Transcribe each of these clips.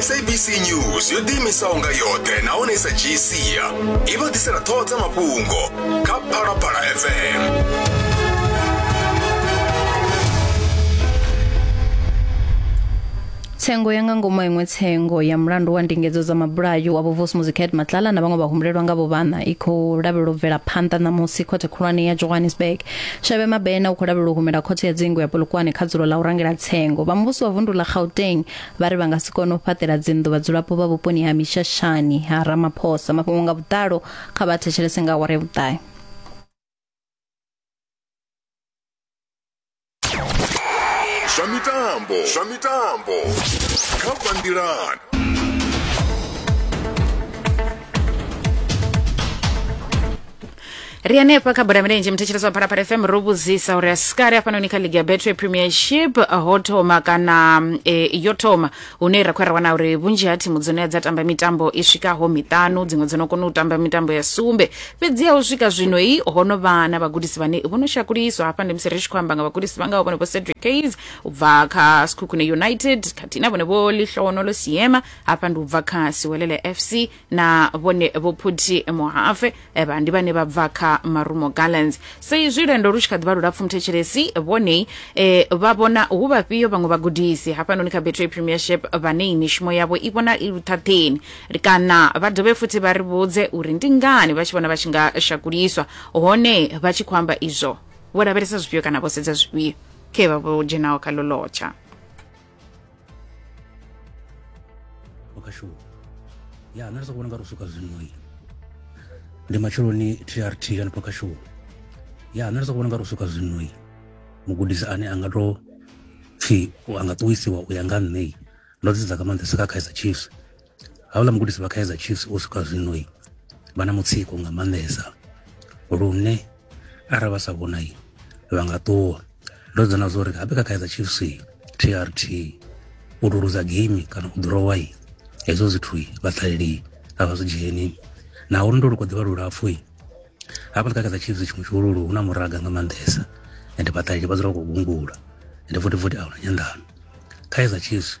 sabc news yo ḓiimisaho nga yoṱhe nahone sa dzhii sia i vha ḓisela ṱhoho dza mafhungo kha phalaphala fm tsengo ya nga ngomu iṅwe tsengo ya mulandu wa ndingedzo dza mabulayo wa vhuvusi muziket matlala na vhaṅwe vhahumbulelwa nga vhuvhana i khou lavhelelwa u bvela phanḓa ṋamusi khothe khulwane ya johannesburg Shavhe Mabena u khou lavhelelwa u humela khothe ya dzingu ya Polokwane kha dzulo ḽa u rangela tsengo. Vha muvhuso wa vundu ḽa Gauteng vha ri vha nga si kone u fhaṱela dzinḓu vhadzulapo vha vhuponi ha Mishashani ha Ramaphosa. Mafhungo nga vhuḓalo kha vha thetshelese nga awara ya vhuṱahe. Zwa mitambo, zwa mitambo kha Bandilan. ri hanefha kha bola milenzhe muthetshelesi wa phalaphala fm ro vhudzisa uri asikale hafhanoni kha ligi ya betway premiership ho thoma kana e, yo thoma hune ra khou ya ra wana uri vhunzhi ha thimu dzone dza tamba mitambo i swikaho miṱanu dziṅwe dzo no kona u tamba mitambo ya sumbe fhedziha u swika zwino i ho no vha na vhagudisi vhane vho no shakuliswa hafha ndi musi ri tshi khou amba nga vhagudisi vha ngaho vhone vho cedric case u bva kha skhukhune united khathihi na vhone vho lihlohonolo siema hafha ndi u bva kha siwelele fc na vhone vho phuthi muhafe eh, vha ndi vhane vha bva kha marumo gallants sa izwi lwendo lu tshi kha ḓivha lulapfu muthetshelesi vhone eh, vha vhona hu vhafhio vhaṅwe vhagudisi hafhanoni kha betway premiership vhane mishumo yavho i vhona i luṱhaṱheni kana vha dovhe futhi vha ri vhudze uri ndi ngani vha tshi vhona vha tshi nga shakuliswa hone vha tshi khou amba izwo vho lavhelesa zwifhio kana vho sedza zwifhio khe vha vho dzhenaho kha lolotsha makashuwa ya nṋe ndi soko vhona nga ri u swika zwino i ndi matsheloni trt kana pakashuwa ya nṋe ndi soko vhona nga ri u swika zwino i mugudisi ane a nga to pfhi a nga ṱuwisiwa u ya nga nṋe ndo dzi dza nga maanḓesa kha kaizer chiefs hauḽa mugudisi vha kaizer chiefs u swika zwinoi vha na mutsiko nga maanḓesa lune arali vha sa vhonai vha nga ṱuwa ndo dzona zwo uri habe kha kaizer chiefs trt u to luza game kana u ḓurowai hezwo zwithu vha ṱaleli a vha zwi dzheni naho lwendo lu kho ḓivha lulapfhu hafha ndi kha kaizer chiefs tshiṅwe tshihululu hu na muraga nga maanḓesa ende vhaṱaleli vha dzula vha khou gungula ende futhi futhi a huna nyanḓano kaizer chiefs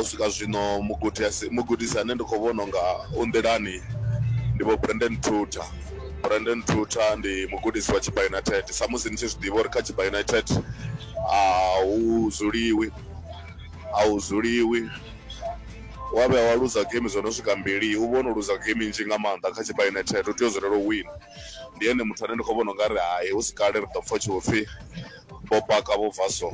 U swika zwino mugudi a si, mugudisi ane ndi khou vhona u nga u nḓilani ndi Vho Brendon Truter. Brendon Truter ndi mugudisi wa Tshibaa United. Samusi ni tshi zwi ḓivha uri kha Tshibaa United a hu dzuliwi, a hu dzuliwi. Wa vhuya wa luza geimi dzo no swika mbili, u vha o no luza geimi nnzhi nga maanḓa kha Tshibaa United, u tea u dzulela u wina. Ndi ene muthu ane ndi khou vhona u nga ri hai hu si kale ri ḓo pfha hu tshi vho pfhi vho paka vho bva so.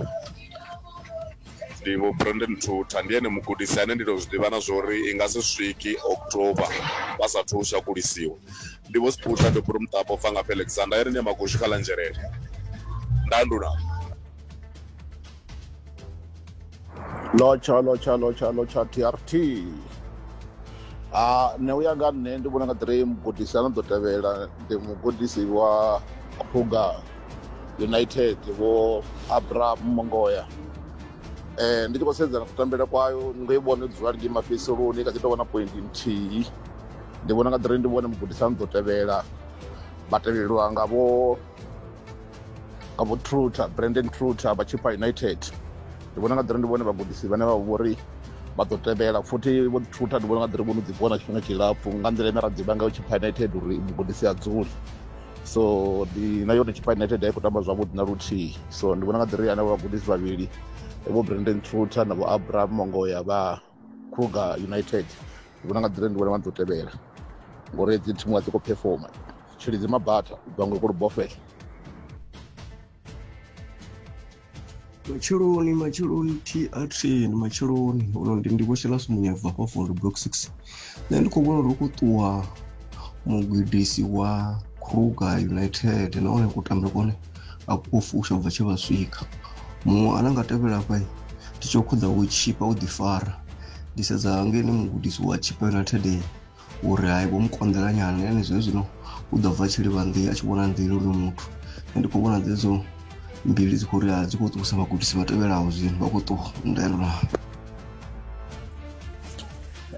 ndi vho Brandon Thutha ndi ene mugudisi ane ndi tou zwi ḓivha na zwa uri i nga si swiki October vha sathu u shakulisiwa ndi vho Siputha Doburu Muṱapo bva nga Alexander ya ri ṋea magoshi kha ḽa nzhelele ndandula lotsha lotsha lotsha lotsha trt a nṋe u ya nga nṋe ndi vhona nga ḓirei mugudisi a no ḓo tevhela ndi mugudisi wa krugar united vho abraham mongoya um ndi tshi khou sedza na kutambele kwayo ndo i vhona dzula ligi mafhedziseloni i kha ḓi tou vhona pointi nthihi ndi vhona nga ḓiri ndi vhone mugudisani ḓo tevhela vha tevhelelwa nga vho nga vho truter brandon truter vha chippa united ndi vhona nga ḓiri ndi vhone vhagudisi vhane vha vho ri vha ḓo tevhela futhi vho truter ndi vhona nga ḓiri vho no ḓi vhona tshifhinga tshilapfhu nga nḓila ine ra ḓivha ngayo chippa united uri mugudisi a dzuli so ndi na yone chipa united a i khou tamba zwavhuḓi na luthihi so ndi vhona nga ḓiri ane vhagudisi vhavhili vho brandon truter na vho abraham mongoya vha kruger united ndi vhona nga ḓiri ndi vhona vha ḓo tevhela ngori dzi thimu a dzi khou performa tshilidzi mabata vhaṅwe kolubofela matsheloni matsheloni trt ndi matsheloni uno ndi ndi vhoshelas munyebva hafha for block six nṋe ndi khou vhona uri khou ṱuwa mugudisi wa kruger united nahone kutambele kone a kuo fusha bva tshe vha swika muṅwe ane nga tevhela fha ndi tsho khuḓa wo tshipa u ḓifara ndi sedza ngene mugudisi wa tshipa united uri hai vho mu konḓela nyana ene zwe zwino u ḓo bva tshi livha nḓila a tshi vhona nḓila uri muthu ndi khou vhona dzedzo mbili dzi khou ri dzi khou ṱuwisa vhagudisi vha tevhelaho zwino vha khou ṱuwa ndaelona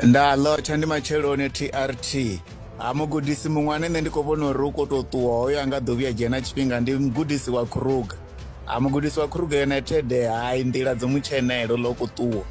nda ḽotsha ndi matsheloni trt ha mugudisi muṅwe ane nṋe ndi khou vhona uri u khou tou ṱuwa hoyo a nga ḓo vhuya dzhena tshifhinga ndi mugudisi wa kruger ha mugudisi wa khuruga united hai nḓila dzo mu tshenela ḽo ku ṱuwa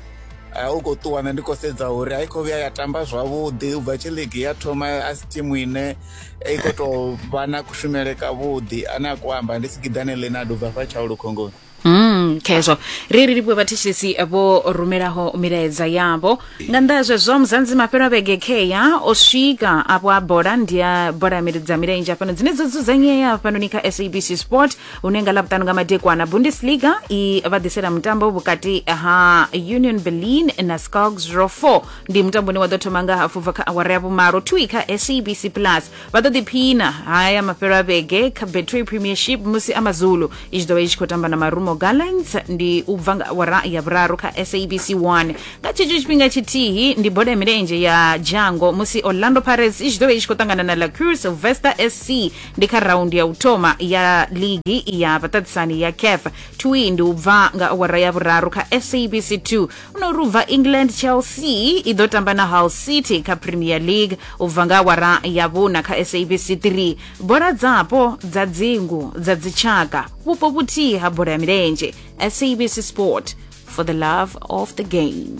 u khou ṱuwa nṋe ndi khou sedza uri a i khou vhuya ya tamba zwavhuḓi u bva tshi ligi ya thoma a si thimu ine i khou tou vha na kushumele kavhuḓi ane a ku amba ndi sigidane lenard u bva fha tshaulu khongoni Mm, khezwo ri ri livhuwe vhathetshelesi vho rumelaho milaedza yavho nga nnḓa ha zwezwo muzanzi mafhelo a vhege kheya o swika afho a bola ndi ya bola ya miri- dza milenzhe fhano dzine dzo dzudzanyea fhanoni kha sabc sport une nga ḽavhuṱanu nga madekwana bundesliga i vha ḓisela mutambo vhukati ha union berlin na scogs ro 4 ndi mutambo une wa ḓo thoma nga hafu bva kha awara ya vhumalo twi kha sabc plus vha ḓo ḓiphina haya mafhelo a vhege kha betway premiership musi amazulu i tshi ḓo vha i tshi khou tamba na marumo gallants ndi u bva nga awara ya vhuraru kha sabc 1 nga tshetsho tshifhinga tshithihi ndi bola ya milenzhe ya dzhango musi orlando pirates i tshi ḓo vha i tshi khou ṱangana na lacur sylvester sc ndi kha raundi ya u thoma ya ligi ya vhaṱaṱisani ya caf twi ndi u bva nga awara ya vhuraru kha sabc 2 no ri u bva england chelsea i ḓo tamba na hull city kha premier league u bva nga awara ya vhuna kha sabc 3 bola dzapo dza dzingu dza dzitshaka vhupo vhuthihi ha bola ya milenzhe sabc sport for the love of the game